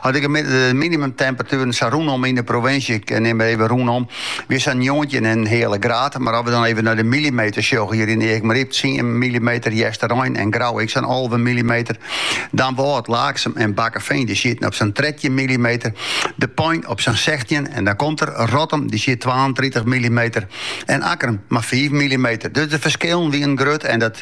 As ik mei de minimumtemperatueren sa rûnom yn de provinsje, ik neam mar even rûnom, wie sa njoggentjin en in heale graad. Mar as we dan even nei de millimeters sjogge hjir yn Aakmaryp, tsien millimeter Hjerstgjin en Grou ek sa'n alve millimeter. Damwâld, Laaksum en Bakkeveen, dy sieten op sa'n trettjin millimeter. De Pein op sa'n sechstjin en dan komt der Rottum, dy siet twaentritich millimeter en Akkrum mar fiif millimeter. Dus de ferskillen wienen grut en dat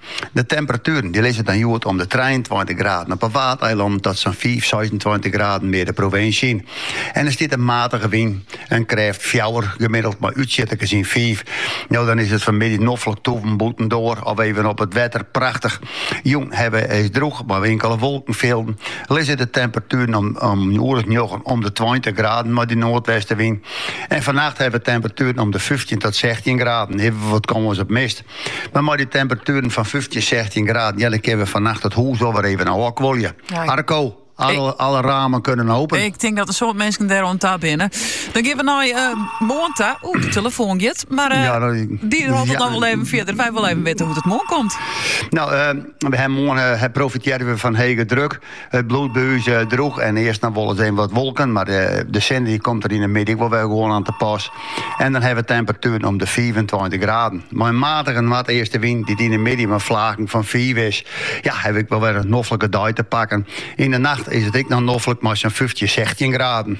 De temperatueren die lizze dan hjoed om de 23 graden op 'e Waadeilannen tot sa'n 5, 26 graden mear de provinsje yn. En der stiet in matige wyn, in krêft 4 gemiddeld, mei útsjitters nei sa'n 5. No dan is it fanmiddei noflik tôvjen bûtendoar of even op it wetter prachtich. Jûn hawwe wy it droech, mei inkele wolkenfilden. Lizze de temperatueren om oere njoggen om de 20 graden mei dy noardwestenwyn. En fannacht hawwe temperatueren om de 15 tot 16 graden, even wat kâns op mist. Mar mei dy temperatueren fan fyftjin, sechstjin graden, ja, dan kinne we fannacht it hûs wol wer even ôfkuolje. Ja, ik- Arco, alle, alle ramen kunnen open. Ik tink dat in soad minsken dêr oan ta binne. Dan geane we nei eh moarn ta. Oeh, de telefoon giet. Maar eh, Ja, dat- die houdt het ja. nog wel even verder. Wij willen even witte hoe't it moarn komt. Nou, eh, moarn eh, profitearje we fan hege druk. It bliuwt by ús droech en earst noch wolris even wat wolken, mar de sinne dy komt der yn de middei ek wol wer gewoan oan te pas. En dan hawwe we temperatueren om de fiifentweintich graden. Mei in matige noardeastenwyn dy't yn de middei mei flaken fan fiif is, ja, hawwe we ek wol wer in noflike dei te pakken. Yn de nacht is it ek noch noflik mei sa'n fyftjin, sechstjin graden.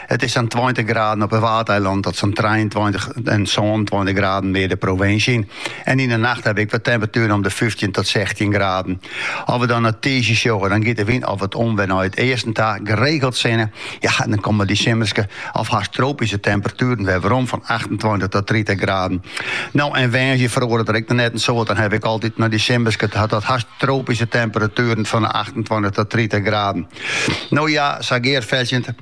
It is sa'n tweintich graden op 'e Waadeilannen tot sa'n trijeentweintich, sânentweintich graden mear de provinsje yn. En yn 'e nacht hawwe we ek wer temperatueren om de fyftjin tot sechstjin graden. As we dan nei tiisdei sjogge, dan giet de wyn ek wat om wer nei it easten ta, geregeld sinne. Ja, en dan komme dy simmerske of hast tropyske temperatueren wer werom fan achtentweintich tot tritich graden. No en woansdei feroaret der ek noch net in soad, dan hawwe we ek altyd noch dy simmerske tot hast tropyske temperatueren fan de achtentweintich tot tritich graden. No ja, gearfetsjend.